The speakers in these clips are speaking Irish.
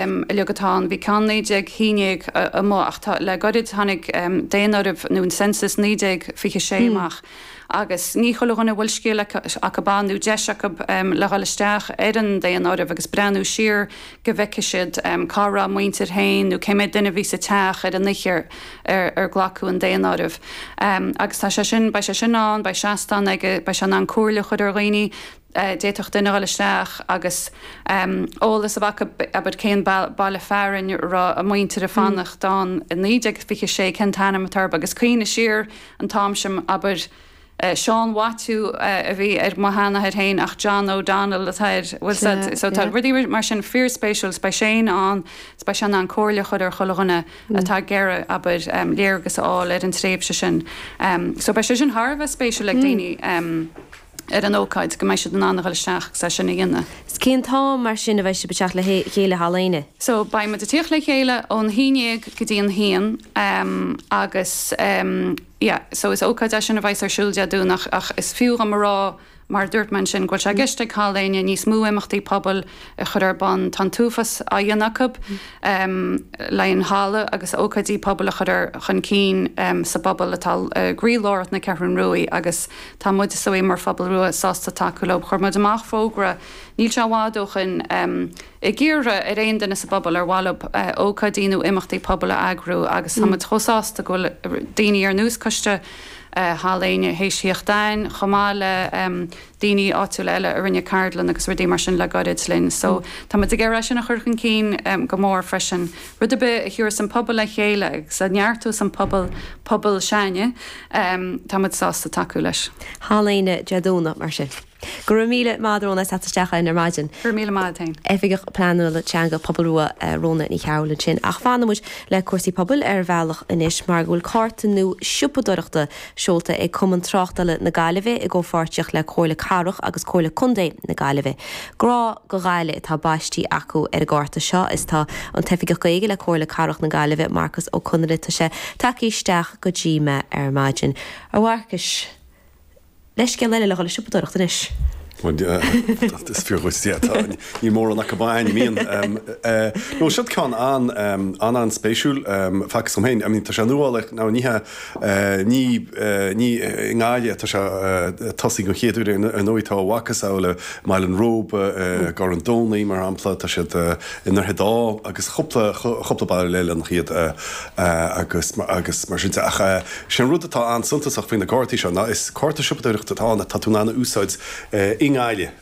uilig atá ann. Bhí ceann 1911 amuigh ach le goirid tháinig daonáireamh nó an census 1926 amach agus ní chuile dhuine a bhfuil scéal acu ann nó deis acu le dhul isteach ar an daonáireamh agus breathnú siar go bhfeicfidh siad cá raibh a muintir féin nó cé méad duine a bhí sa teach ar an oíche ar glacadh an daonáireamh. Agus tá sé sin, beidh sé sin ann, beidh seastán aige, beidh sé in ann comhairle a chur ar dhaoine, d'fhéadfadh duine a dhul isteach agus eolas a bheith acu, abair, cén baile fearainn a raibh a muintir ag fanacht ann i 1926, cén t-ainm atá air, agus cuimhne siar an t-am sin, abair, Seán Mhaitiú a bhí ar mo sheanathair féin ach John O'Donnell atá air. Bhuel, sea, so tá rudaí mar sin fíorspéisiúil is beidh Shane ann, is beidh sé in ann comhairle a chur ar chuile dhuine atá ag iarraidh, abair, léargas a fháil ar an tréimhse sin. So beidh sé sin thar a bheith spéisiúil ag daoine. ar an ócáid, go mbeidh siad in ann a dhul isteach agus é sin a dhéanamh. Cén t-am mar sin a bheidh sibh ag teacht le chéile Halla Éinne? So, Beidh muid ag tíocht le chéile ón haon ndéag go dtí an haon agus yeah so is ócáid é sin a bheidh's ar siúl Dé Domhnaigh ach is fiú dhom a rá mar dúirt mé ansin go bhfuil sé i gceist ag Halla Éinne níos mó imeachtaí pobail a chur ar bun. Tá an t-uafás á dhéanamh acu le haghaidh an halla agus ócáidí pobail a chur chun cinn sa bpobal atá i gcroílár na Ceathrún Rua agus tá muid, sa, mar Phobal Rua, sásta tacú leo. Chuir muid amach fógra, níl sé i bhfad ó shin, ag iarraidh ar aon duine sa bpobal ar mhaith leo ócáidí nó imeachtaí pobail a eagrú agus tá muid chomh sásta go bhfuil daoine ar nós Coiste Halla Éinne théis thíocht ann chomh maith le daoine áitiúla eile a rinne ceardlann agus rudaí mar sin le gairid linn. So tá muid ag iarraidh é sin a chur chun cinn go mór freisin. Rud ar bith a thiúras an pobal le chéile agus a neartóidh an pobal, pobal sláine, tá muid sásta tacú leis. Halla Éinne Dé Domhnaigh mar sin? Go raibh míle maith agat a Rhona as teacht isteach ar maidin. Go raibh míle maith duit féin. Oifigeach Pleanála Teanga Pobal Rua Rhona Ní Chearbhaill ansin. Ach fanfaidh muid le cúrsaí pobail ar bhealach anois mar go bhfuil cárta nua siopadóireachta Seolta ag Cumann Tráchtála na Gaillimhe i gcomhpháirtíocht le Comhairle Cathrach agus Comhairle Contae na Gaillimhe. 'Grá do Ghaillimh' atá baistí acu ar an gcárta seo is tá an tOifigeach Gaeilge le Comhairle Cathrach na Gaillimhe, Marcus Ó Conghaile tá sé tagtha isteach go dtí mé ar maidin. A Mharcais, leithscéal eile le dhul ag siopadóireacht anois. Bhuel, is fíor dhuit, níl mórán acu ann. Nó, siod ceann an-an-an-spéisiúil, feictear dhom féin, I mean, tá sé nuálach, now, ní hea, Ní, ní i nGaillimh atá sé ag tosaí den chéad uair, ar ndóigh. Tá a mhacasamhail i mBaile an Róba, i gCarn Domhnach, mar shampla. Tá siad i nDroichead Átha agus cúpla, cúpla baile eile ina cheann agus mar sin de. Ach sé an rud atá an-suntasach faoi na cártaí seo ná is cárta siopadóireachta atá ann atá tú in ann a úsáid i nGaillimh.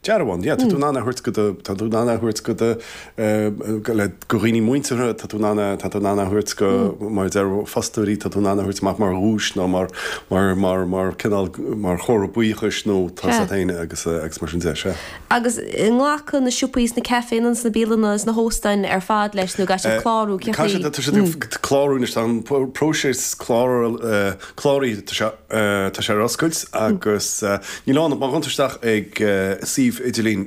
Dearbhán, yeah, tá tú in ann a thabhairt go do, tá tú in ann a thabhairt go do, le go dhaoine muinteartha, tá tú in ann, tá tú in ann a thabhairt go, mar a deir fostóirí, tá tú in ann a thabhairt amach mar dhuais nó mar, mar, mar, mar cineál, mar chomhartha buíochais nó tá's agat féin agus, agus mar sin de, sea. Agus nglacann na siopaí is na caiféanna is na bialanna is na hóstáin ar fad leis nó gcaithfidh siad clárú, cén chaoi? Caithfidh siad, tá siad ag clárú anois, tá an próiseas cláraithe, tá sé, Tá sé ar oscailt agus níl ann ach má chuann tú isteach ag suíomh idirlín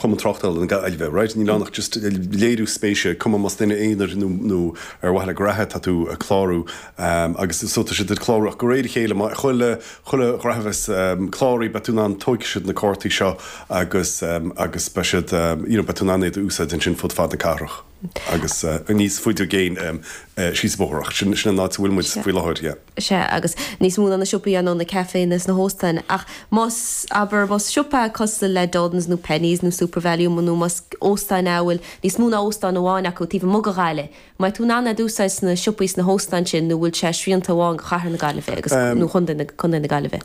Chumann Tráchtála na Gaillimhe, raight? Níl ann ach just léiriú spéise, cuma más duine aonair nó ar mhaithe le graithe atá tú ag clárú agus so tá siad ag clárú ach go réidh le chéile má, chuile, chuile ghraithe bheas cláraithe beidh tú in ann, tóigfidh siad na cártaí seo agus, agus beidh siad, you know, beidh tú in ann iad a úsáid ansin fud fad na cathrach. agus níos faide i gcéin síos an bóthar ach sin an áit a bhfuil muid faoi láthair, yeah. Sea, agus níos mó ná na siopaí, ar ndóigh, na caiféanna is na hóstáin ach más, abair, más siopa é cosúil le Dunnes nó Penneys nó Supervalu nó más óstán é a bhfuil níos mó ná óstán amháin acu taobh amuigh de Ghaillimh, mbeidh tú in ann é d'úsáid sna siopaí is sna hóstáin sin nó bhfuil sé srianta amháin go Cathair na Gaillimhe agus, nó Contae na Gaillimhe?